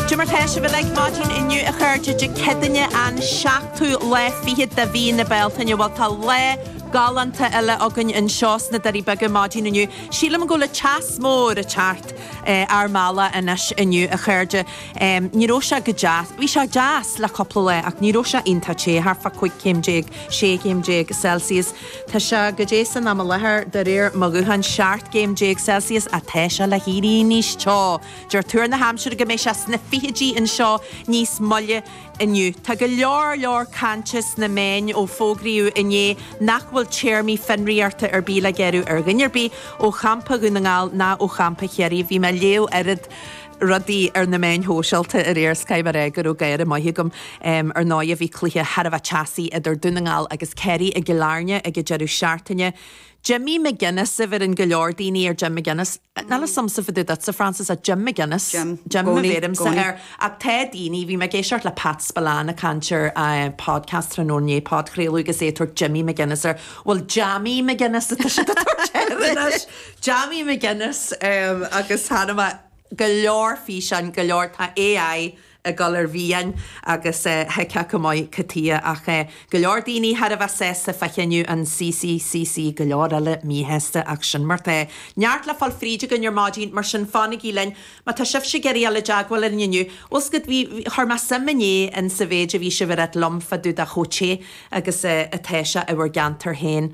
Cad é mar atá sibh uilig maidin inniu a chairde Dé Céadaoine an seachtú lá fichead de mhí na Bealtaine bhuel tá lá galánta eile againn anseo sna Doirí Beaga maidin inniu sílim go bhfuil an teas mór ag teacht ár mbealach anois inniu a chairde ní raibh sé go deas bhí sé deas le cúpla lá ach ní raibh sé iontach té thart fá 15 céim 16 céim Celsius tá sé, caidé, san am i láthair de réir mo ghutháin 17 céim Celsius is tá sé le héirí níos teo Deir tuar na haimsire go mbeidh sé sna fichidí anseo níos moille inniu. Tá go leor leor cainte sna meáin ó fógraíodh inné nach bhfuil téarmaí fionraíochta ar bith le gearradh ar dhuine ar bith ó champa Dhún na nGall ná ó champa Chiarraí. Bhí mé ag léamh oiread rudaí ar na meáin shóisialta aréir is caithfidh mé a rá go raibh gáire maith agam. Ar ndóigh bhí cluiche thar a bheith teasaí idir Dún na nGall agus Kerry i gCill Airne ag an deireadh seachtaine. Jimmy McGuinness a bheireann go leor daoine ar Jim McGuinness. Níl a fhios agamsa fá dtaobh duitse, Frances ach Jim McGuinness, Jim, Jim a bheirimse air, ach tá daoine, bhí mé ag éisteacht le Pat Spillane ag caint ar podcast tráthnóna inné, podchraoladh, agus é ag tabhairt Jimmy McGuinness air, bhuel Jammy McGuinness atá siad ag tabhairt air anois, Jammy McGuinness, agus chonaic mé go leor físeáin, go leor, tá AI, ag dul ar mire agus thuigfeá go maith cad chuige atá ach go leor daoine thar a bheith sásta fá chinneadh an CCCC go leor eile míshásta ach sin mar atá. Neart le fáil fríd againn ar maidin mar sin fanaigí linn má tá sibhse ag iarraidh dul i dteagmháil linn inniu. Bhuel is cad é, chuir mé suim inné in sa mhéid a bhí sibh a ráit liom fá dtaobh de chomh te agus atá sé i bhur gceantar féin.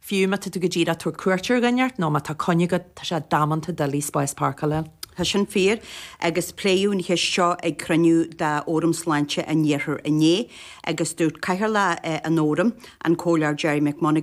Fiú má tá tú go díreach ag tabhairt cuairt ar dhuine nó má tá coinne agat, tá sé damanta doiligh spás páirceála a fháil. Tá sin fíor, agus pléadh an cheist seo ag cruinniú de Fhóram Sláinte an Iarthair inné, agus dúirt Cathaoirleach an Fhóraim, an Comhairleoir Gerry McMonagail,